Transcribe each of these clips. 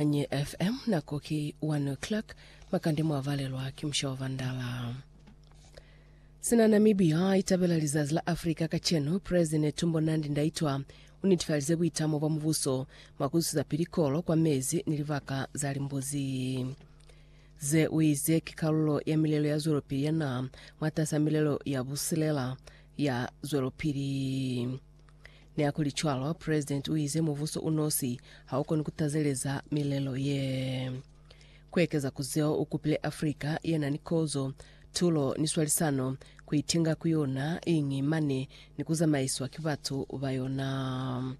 Nye FM, nako ki 1 o'clock, makande mwa valelwa ki musha wa vandala. Sina Namibia itabela lizazi la Africa kacenu, President Netumbo Nandi Ndaitwa unitifalize buitamo bwa mubuso mwa kuzusaapili kolo kwa mezi ni libaka za limbuzi. Ze uize ki kalulo ya milelo ya zwelopili ya naha mwatas'a milelo ya busilela ya zwelopili. Nihakulicwalo, President uize mubuso unosi haukoni kutazeleza milelo ye. Kuekeza kuzeo, ukupile Africa yenani kozo, tulo, ni swalisano kuitinga ku yona iñi mane ni kuzamaiswa ki batu bayona.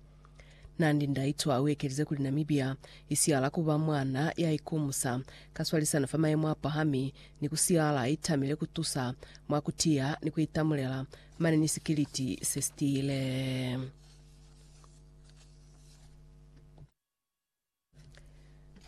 Nandi Ndaitwah uekelize kuli Namibia isihala kuba mwana yaikumusa ka swalisano fa mayemo apahami ni kusihala itamile kutusa mwa kutiya ni kuitamulela Mane ni sikiliti se sitile.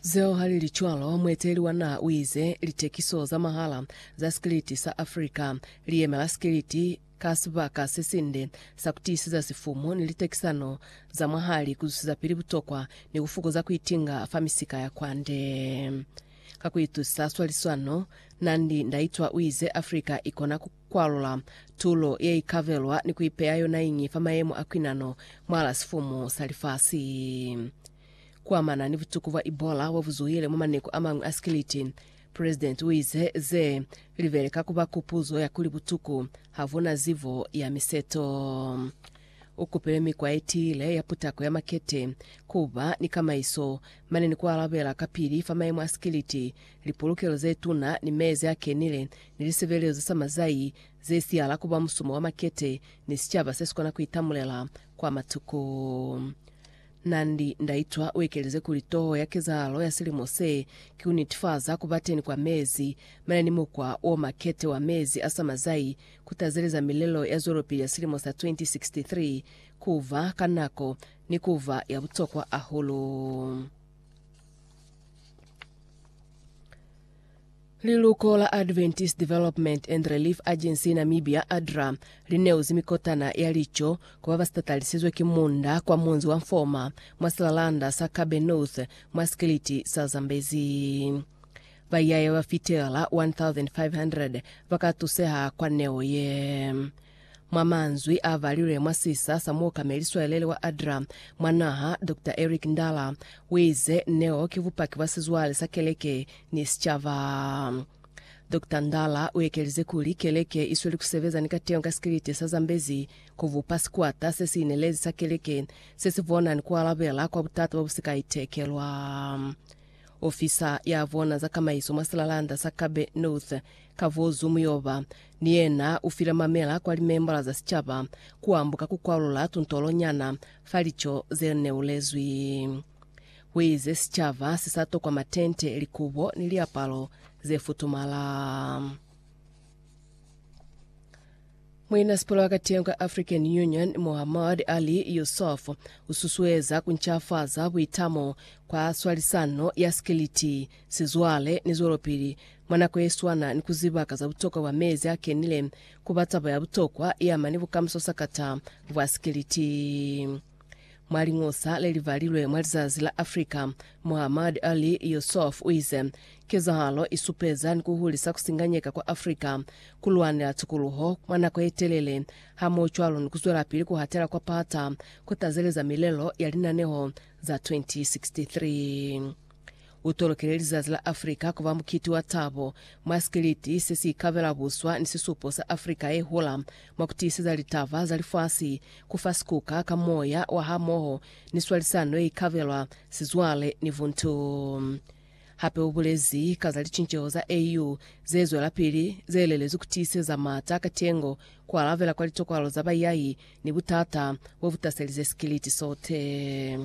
Zeo ha li li cwalo, mueteleli wa naha u ize, Litekiso za mahala za sikiliti sa Africa li yemela sikiliti ka sibaka se sinde sa ku tiiseza sifumu ni litekisano za mwahali, ku zusezapili butokwa ni ku fukuza ku itinga fa misika ya kwande. Ka ku itusisa swaliswano, Nandi Ndaitwah u ize, Africa i kona ku kwalula tulo yeikabelwa ni kuipeya yonaiñi fa mayemo a kwinano mwala sifumu sa lifasi. Kuamana ni butuku bwa Ebola bobuzuhile mwa maneku amañwi a sikiliti, President uize ze libele ka kuba kupuzo ya kuli butuku habuna zibo ya miseto. Ukupile mikwa yetiile ya putako ya makete, kuba ni kamaiso, mane ni kualabela kapili fa mayemo a sikiliti lipulukelo ze tuna, ni mezi a kenile, ni lisebelezo sa mazai ze siyala kuba musumo wa makete, ni sicaba se sikona kuitamulela kwa matuko. Nandi, Ndaitwa uekelize kuli toho ya kezahalo ya silimo se ki kunitifaza kuba teni kwa mezi mane ni mukwa o makete wa mezi a sa mazai ku tazeleza milelo ya zwelopili ya silimo sa 2063 kuba ka nako ni kuba ya butokwa ahulu. Liluko la Adventist Development and Relief Agency Namibia, ADRA, li neuzi mikotana ya lico ku ba ba sitatalisizwe ki munda kwa munzi wa Mfoma mwa silalanda sa Kabe North mwa sikiliti sa Zambezi. Baiyaya ba fitela 1,500 ba ka tuseha kwa neo ye. Mwa manzwi a valilwe mwa sisa sa Muokameli Swalelele wa ADRA mwa naha, Doctor Eric Ndala, uize, Neo ki bupaki bwa sizwale sa keleke ni sicaba. Doctor Ndala uekelize kuli, Keleke isweli kusebeza ni kateño ka sikiliti sa Zambezi kubupa sikwata sesiinelezi sa keleke, sesibona ni kualabela kwa butata bwa busikaitekelwa. Ofisa ya vona za kamaiso mwa silalanda sa Kabe North, Kavozu Muyoba, ni yena u file mamela kwa limembola za sicaba ku ambuka ku kwalula tuntolo nyana fa lico ze neulezwi. Hu ize sicaba si sa tokwa matente, likubo ni liapalo ze futumala. Muinasipula wa katiño ka African Union Muhammad Ali Yusuf ususueza kuncafaza buitamo kwa swalisano ya sikiliti, sizwale ni zwelopili mwa nako yeswana ni kuzibaka za butokwa bwa mezi akenile kuba taba ya butokwa yeamani bukamuso sa kata bwa sikiliti. Mwa liñosa le li balilwe mwa lizazi la Africa, Muhammad Ali Yusuf u ize, Kezahalo i supeza ni ku hulisa ku singanyeka kwa Africa, ku lwanela tukuluho mwa nako ye telele, hamohocwalo ni ku zwelapili ku hatela kwa pata ku tazeleza milelo ya linaneho za 2063. U tolokile lizazi la Afrika ku ba mukiti wa tabo, mwa sikiliti se si ikabela buswa ni sisupo sa Afrika ye hola, mwa ku tiiseza litaba za lifasi, ku fa sikuka ka moya wa hamoho ni swalisano ye ikabelwa, sizwale, ni buntu. Hape u bulezi ka za licinceho za AU ze zwelapili, ze lelezwi ku tiiseza m'ata a katengo, ku alabela kwa litokwalo za baiyahi, ni butata bo bu taselize sikiliti sote.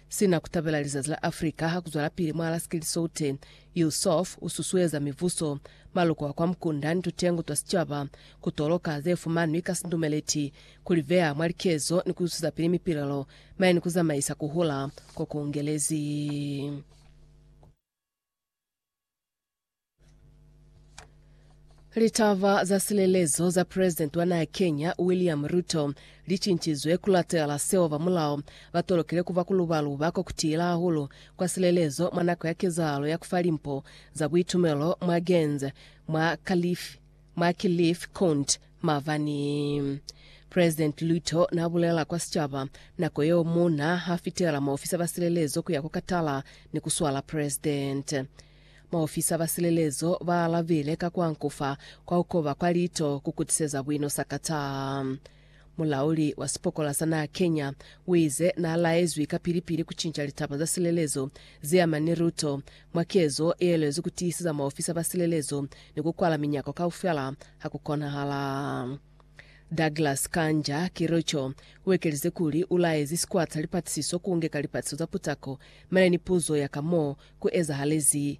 Sina kutabela lizazi la Africa hakuzwalapili mwa Alaska li Soute, Yusuf ususueza mivuso, maloko a kwa mukunda ni tutengo twa sicaba kutoloka zefumanwi ka sindumeleti, kulibeya mwa likezo ni kuzwisisapili mipilelo mane ni kuzamaisa kuhula kokungelezi. Litaba za silelezo za president wa naha Kenya William Ruto licincizwe kulatela seo ba mulao batolokile kuba kulubaluba kwa kutila hahulu kwa silelezo mwa nako ya kezahalo ya kufa limpo za buitumelo mwa Genz mwa Kalifi Macleaf Kunt mabani. President Luto na bulela kwa sicaba nako yeo muna ha fitela maofisa ba silelezo kuya ku katala ni ku swala president. Maofisa ba silelezo ba alabile ka ku ankufa kwa ku koba kwa lito ku kutiseza buino sa Qatar. Mulauli wa sipokola sa naha Kenya uize na laezwi kapili-pili kucinca litaba za silelezo zeamana ni luto, mwa kezo yeelwezi kutiiseza maofisa ba silelezo ni kukwala minyako kaufela hakukonahala. Douglas Kanja Kericho uekelize kuli ulaezi sikwata lipatisiso kuunge ka lipatiso za putako mane ni puzo ya ka mo kuezahalezi